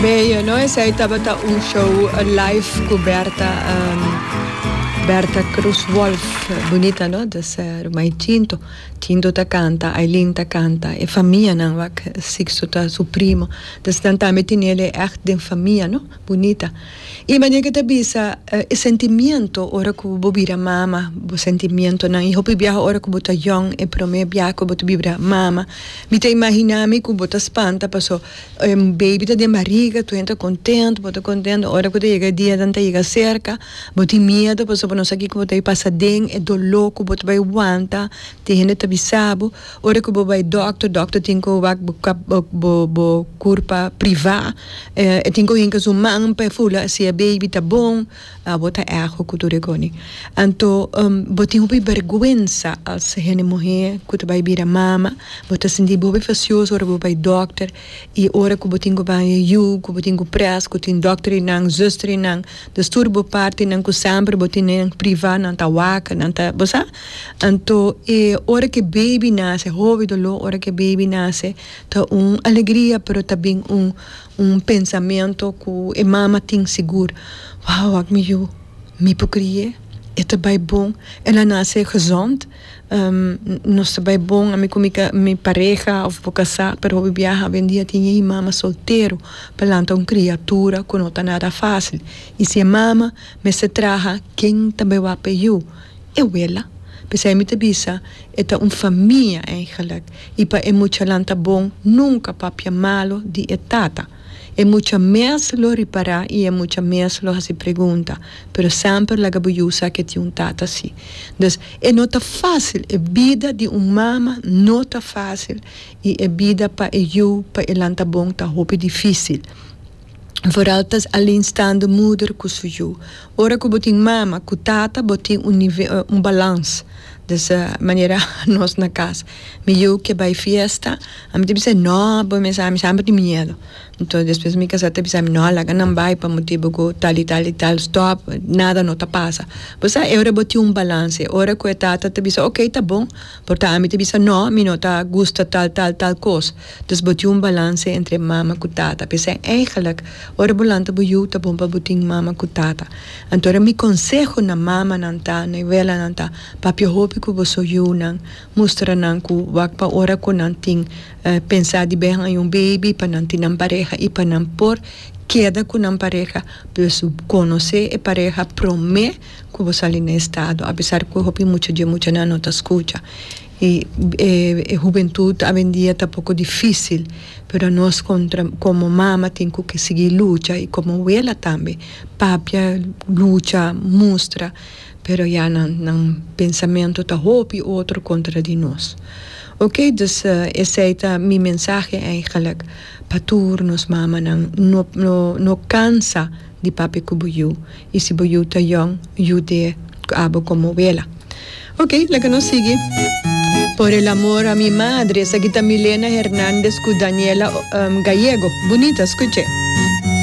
Beyo no esey tabata un show live cu Berta Berta Cruz Wolf bunita no dus rumai Tinto Tinto ta canta Aylin ta canta e famia nan wak Sixto ta su primo dus nan tambe tinele echt den famia no. bunita. I mane ke ta bisa e sentimiento ora ku bo bira mama, bo sentimientonan. I hopi biaha ora ku bo ta yòn, e promé biaha ku bo ta bira mama, mi ta imaginá mi ku bo ta spanta paso e baby ta den bariga, tur hende ta kontent, bo ta kontent. Ora ku ta yega e dia nan ta yega serka, bo tin miedu pasobra bo no sa kiko bo ta pasa aden, e doló ku bo ta bai wanta, tin hende ta bisa bo. Ora ku bo bai dòkter, dòkter tin ku wak bo kòp bo bo kurpa privá. E e tin ku hinka su man pa e fula si e baby ta bon, abo ta èhò ku tur e koni. Anto bo tin hopi bèrgwensa as hende muhé ku ta bai bira mama. Bo ta sinti bo hopi fasioso ora bo bai dòkter. I ora ku bo tin ku bai e yu, ku bo tin ku près, ku tin dòkterinan, zùsterinan, dus tur bo partinan ku semper bo tinen privá nan ta wak, nan ta bo sa. Anto e ora ku e baby nase, e hovi doló ora ku e baby nase ta un alegria pero ta bin un un pensamentu ku e mama tin sigur, wou ak mi yu mi por kri'é, e ta bai bon, el a nase gezond, nos ta bai bon ami ku mi ka mi pareha òf por kasá, pero hopi biaha awendia tin e mama soltero pa lanta un kriatura ku no ta nada fásil i si e mama mester traha ken ta bai wak p'e yu? e wela. P'esei mi ta bisa e ta un famia eigenlijk. I pa e muchanan ta bon nunka papia malu di e tata. E mucha mes lo ripará i e mucha mes lo hasi pregunta, pero semper laga bo yu sa ku e tin un tata así. Dus, e no ta fásil, e bida di un mama no ta fásil i e bida pa e yu pa elan ta bon ta hopi difísil. Vooral ta Aline staan de moeder cu su yu. Ora cu bo tin mama cu tata bo tin un nivel un balans. Dus manera nos na cas. Mi yu ke bay fiesta a mi ta bisa e no bo mesa ami sa mi tin miedo. Entonces despues mi casa ta bisa mi no laga nan bay pa motibu cu tal y tal y tal stop nada no ta pasa. Bo sa e ora bo tin un balans e ora cu e tata ta bisa ok ta bon. Por ta ami ta bisa no, mi no ta gusta tal tal tal kos, dus bo tin un balanse entre mama ku tata. P'esei eigenlik ora bo lanta bo yu ta bon pa bo tin mama ku tata. Anto ora mi konseho na mamanan ta, na abuelanan ta, papia hopi ku boso yunan, mustra nan ku wak pa ora ku nan tin pensa di behan un baby pa nan tin nan pareha i pa nan por keda ku nan pareha, pues konosé e pareha promé. ku bo sali na e estado apesar ku hopi mucha dje muchanan no ta skucha i e hubentut awendia ta poko difísil pero anos kontra komo mama tin ku ke sigui lucha i komo wela tambe papia lucha mustra pero ya nan nan pensamentu ta hopi otro kontra di nos ok dus esei ta mi mensahe eigelik pa tur nos mamanan no no no kansa. di papia ku bo yu, i si bo yu ta yòn, yu te ku abo komo wela. Ok, laga nos sigui. Por el amor a mi madre, esaki ta Milena Hernandez ku Daniela Gallego. Bunita, skuche.